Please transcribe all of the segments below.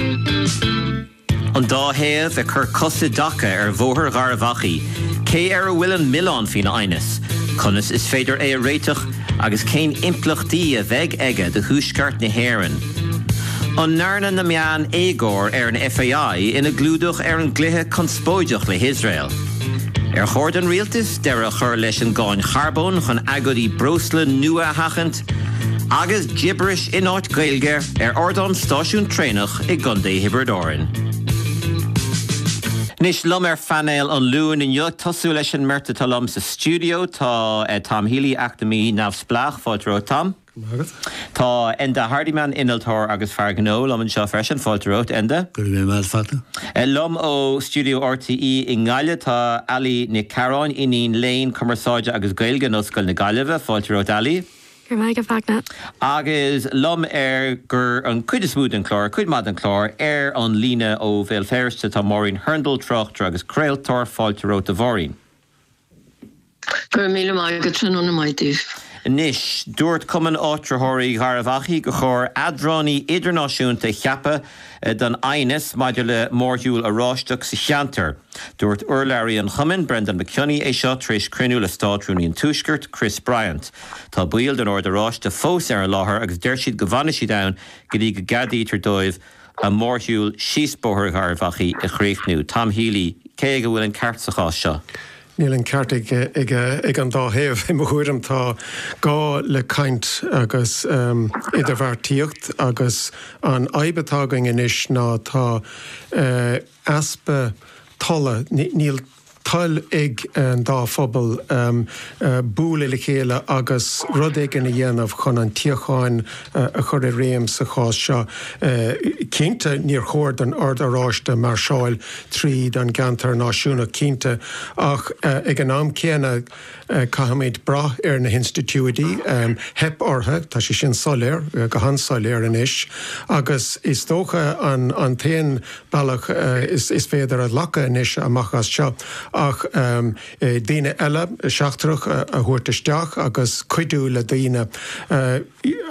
An dá thaobh ag cur cos i dtaca ar Bhóthar Gharbh Achaidh, cé air a bhfuil an milleán faoin aighneas, conas is féidir é a réiteach agus cén impleachtaí a bheidh aige do Thuaisceart na hÉireann? An ndearna na meáin éagóir ar an FAI ina gclúdach ar an gcluiche conspóideach le hIosrael? Ar chóir don rialtas deireadh a chur leis an gcáin charbóin chun agóidí breosla nua a sheachaint? agus gibiris in áit Gaeilge ar ardán stáisiún traenach i gContae Thiobraid Árann. Anois liom ar phainéal an Luain inniu, ag tosú leis an mbeirt atá liom sa stiúideo, tá Tom Healy, eacnamaí neamhspleách, fáilte romhat Tom. Go raibh maith agat. Tá Enda Hardiman, innealtóir agus fear gnó, liom anseo freisin, fáilte romhat Enda. Go raibh maith agat. Liom ó stiúideo RTÉ i nGaillimh tá Ali Nic Chearáin, Iníon Léinn Cumarsáide agus Gaeilge in Ollscoil na Gaillimhe. Fáilte romhat Ali. Go raibh maith agat a Fhachtna. Agus liom ar gur an cuid is mó den chlár, cuid maith den chlár, ar an líne ó Bhéal Feirste tá Máirín Hurndall, tráchtaire agus craoltóir. Fáilte romhat a Mháirín. Go raibh míle maith agat, tráthnóna maith daoibh. Anois, dúirt Cumann Áitritheoirí Gharbhachaidh gur chóir eadránaí idirnáisiúnta a cheapadh don aighneas maidir le mórshiúl Oráisteach sa cheantar. Dúirt urlabhraí an chumainn, Breandán Mac Cionnaith, é seo tar éis cruinniú le Státrúnaí an Tuaiscirt, Chris Bryant. Tá baill den Ord Oráiste fós ar an láthair agus deir siad go bhfanfaidh siad ann go dtí go gceadaítear dóibh a mórshiúl síos Bóthar Gharbh Achaidh a chríochnú. Tom Healy, Cé aige a bhfuil an ceart sa chás seo? Níl an ceart ag an dá thaobh, i mo thuairim. Tá gá le caint agus idirbheartaíocht agus an fhadhb atá againn anois ná tá easpa tola. Níl. toil ag an dá phobal bualadh le chéile agus rud éigin a dhéanamh chun an tsíocháin a chur i réim sa chás seo. Cinnte, níor chóir don Ord Oráiste máirseáil tríd an gceantar náisiúnach, cinnte, ach ag an am céanna, Caithfimid brath ar na hinstitiúidí. Theip orthu, tá sé sin soiléir, go han-soiléir anois, agus is dócha an t-aon bealach is féidir a ghlacadh anois amach as seo ach daoine eile seachtrach a thabhairt isteach agus cuidiú le daoine.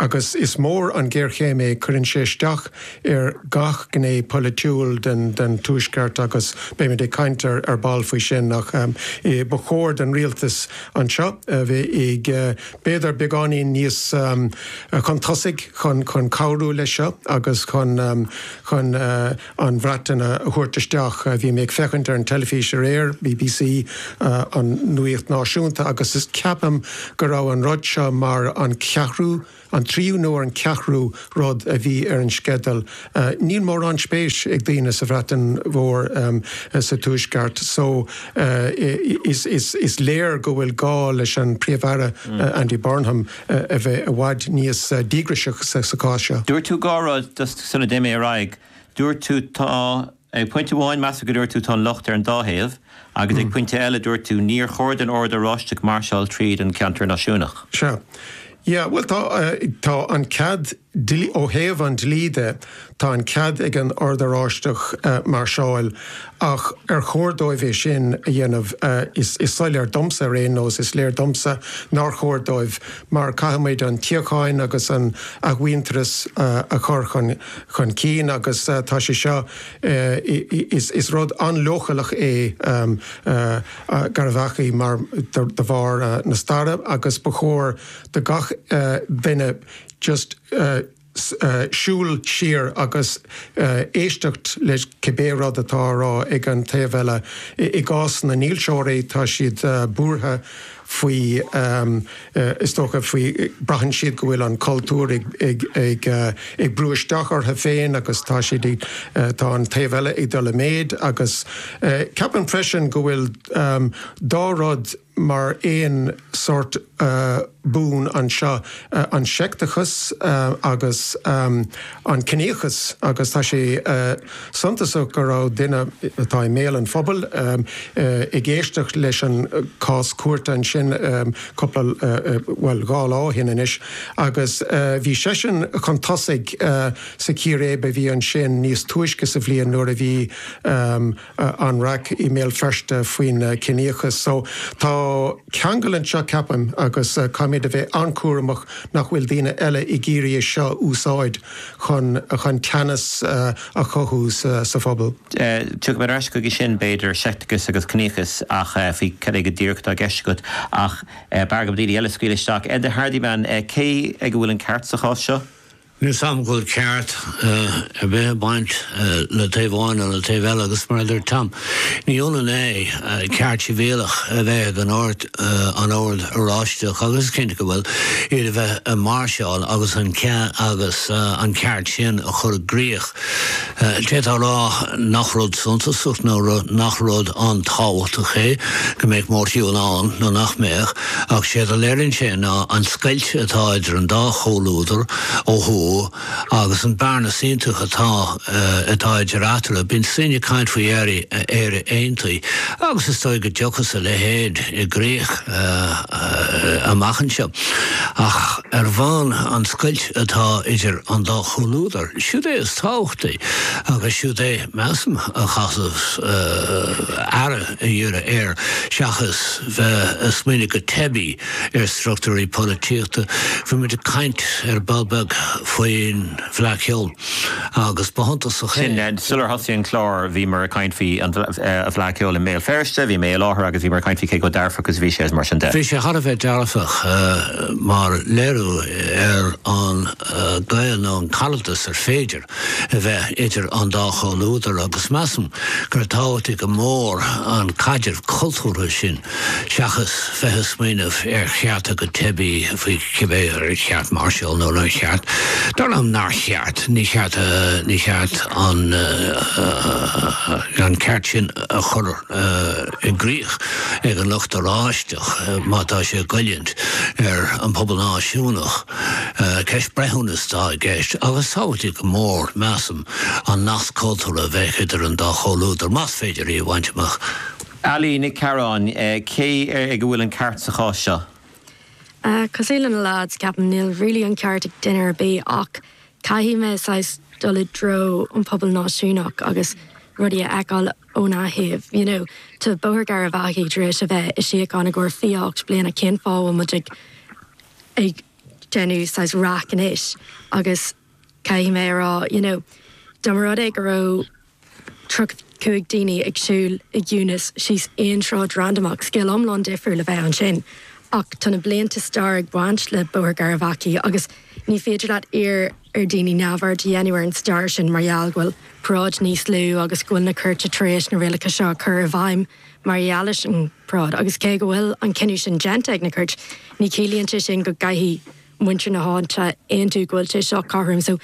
agus is mór an ghéarchéim é, cuireann sé isteach ar gach gné polaitiúil den Tuaisceart agus beimid ag caint ar ball faoi sin ach ba chóir don Rialtas anseo a bheith b'fhéidir beagáinín níos chun tosaigh chun cabhrú leis seo agus chun an Bhreatain a thabhairt isteach. Bhí mé ag féachaint ar an teilifís aréir, bbc, an nuacht náisiúnta, agus ceapaim go raibh an rud seo mar an ceathrú, an tríú nó an ceathrú rud a bhí ar an sceideal. Níl mórán spéis ag daoine sa Bhreatain Mhór sa Tuaisceart seo is léir go bhfuil gá leis an Príomh-Aire, Andy Burnham, a bheith i bhfad níos díograiseach sa chás seo. Dúirt tú dhá rud sula dtéim ar aghaidh. Dúirt tú tá, ag pointe amháin measaim go ndúirt tú tá an locht ar an dá thaobh agus ag pointe eile dúirt tú níor chóir don Ord Oráisteach máirseáil tríd an cheantar náisiúnach. Sea. Yeah, bhuel tá, tá an cead dlí. Ó thaobh an dlí de, tá an cead ag an Ord Oráisteach máirseáil, ach ar chóir dóibh é sin a dhéanamh? Is soiléir domsa ar aon nós, is léir domsa nár chóir dóibh mar caithfimid an tsíocháin agus an athmhuintearas a chur chun cinn agus tá sé seo, is rud an-leochaileach é i gcónaí mar, de bharr na staire agus ba chóir do gach duine. just siúl siar agus éisteacht le cibé rud atá á rá ag an taobh eile. I gcás na ndílseoirí, tá siad buartha faoi, is dócha, faoi, braitheann siad go bhfuil an cultúr ag brú isteach orthu féin agus tá siad, tá an taobh eile ag dul i méid agus ceapaim freisin go bhfuil dhá rud, mar aon sórt bun anseo, an seicteachas agus an ciníochas agus tá sé suntasach go raibh duine atá i mbéal an phobail ag éisteacht leis an cás cúirte ansin cúpla, bhuel dhá lá ó shin anois agus bhí seisean chun tosaigh sa chíréib a bhí ansin níos túisce sa bhliain nuair a bhí an raic i mBéal Feirste faoin ciníochas. So tá ceangal anseo, ceapaim, agus caithfimid a bheith an-cúramach nach bhfuil daoine eile ag iarraidh é seo a úsáid chun chun teannas a chothú sa phobal. Tiocfaidh mé ar ais chuige sin, b'fhéidir, seicteachas agus ciníochas, ach faoi cad é go díreach atá i gceist agat? Ach b'fhearr dom daoine eile a scaoil isteach. Enda Hardiman, cé ag a bhfuil an ceart sa chás seo? Ní mheasaim go bhfuil ceart ar bith ag baint le taobh amháin nó le taobh eile agus mar a dúirt Tom, ní ionann é ceart sibhialach a bheith ag an Ord, an Ord Oráisteach agus is cinnte go bhfuil, iad a bheith ag máirseáil agus an cea, agus an ceart sin a chur i gcrích. D'fhéadfá a rá nach rud suntasach nó nach rud an-tábhachtach é go mbeadh mórshiúl ann nó nach mbeadh, ach sé a léiríonn sé ná an scoilt atá idir an dá chomhluadar ó thuaidh agus an bhearna shuntasach atá atá idir eatarthu. Bíonn daoine ag caint faoi Éire aontaithe agus is dóigh go dtiocfaidh a leithéid i gcrích amach anseo, ach ar ndóigh an scoilt atá idir an dá chomhluadar. siúd é is tábhachtaí agus siúd é, measaim, a chaithfeas muid aire a dhíriú air seachas bheith ag smaoineamh go teibí ar struchtúirí polaitíochta. Bhí muid ag caint ar ball beag faoin bhFleadh Cheoil agus ba shuntasach é. sin. Sular thosaigh an clár bhíomar ag caint faoi an Fleadh Cheoil i mBéal Feirste, bhí mé i láthair agus bhíomar ag caint faoi cé chomh dearfach is a bhí sé is mar sin de. Bhí sé thar a bheith dearfach mar léiriú ar an. gaol nó an caradas ar féidir a bheith idir an dá chomhluadar agus measaim gur tábhachtaí go mór an caidreamh cultúrtha sin seachas bheith ag smaoineamh ar chearta go teibí faoi cibé ar cheart máirseáil nó nár cheart. Dar liom nár cheart. Ní ceart, ní ceart an ceart sin a chur i gcrích ag an lucht Oráisteach má tá sé ag goilliúint ar an bpobal náisiúnach. Ceist breithiúnais atá i gceist agus is tábhachtaí go mór, measaim, an nasc cultúrtha a bheadh idir an dá chomhluadar, más féidir é a bhaint amach. Ailín Nic Cearáin, Cé ag a bhfuil an ceart sa chás seo? Cosúil le na leaids, ceapaim níl really an ceart ag duine ar bith ach Caithfidh mé saghas dul i dtreo an pobal náisiúnach agus rudaí a fheiceáil óna thaobh, you know. Tá Bóthar Gharbhachaidh tar éis a bheith i síocháin i gcomhair fiche ocht bliana, cén fáth a bhfuil muid ag ag déanamh saghas raic anois agus caithfidh mé a rá, you know, dá mba rud é go raibh, 35 daoine ag siúl i gciúnas síos aon sráid randamach, scéal iomlán difriúil a bheadh ansin. Ach tá na blianta staire ag baint le Bóthar Garavaghy agus ní féidir leat iarraidh ar dhaoine neamhaird a dhéanamh ar an stair sin mar gheall go bhfuil paráid níos lú agus go bhfuil na cúirteanna tar éis na rialacha seo a chur i bhfeidhm mar gheall ar an bparáid. Agus cé go bhfuil an cinneadh sin déanta ag na cúirteanna, ní chiallaíonn sé sin go gcaithfidh muintir na háite aontú go bhfuil sé seo cothrom. So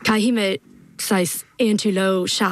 caithfidh mé saghas aontú leosan.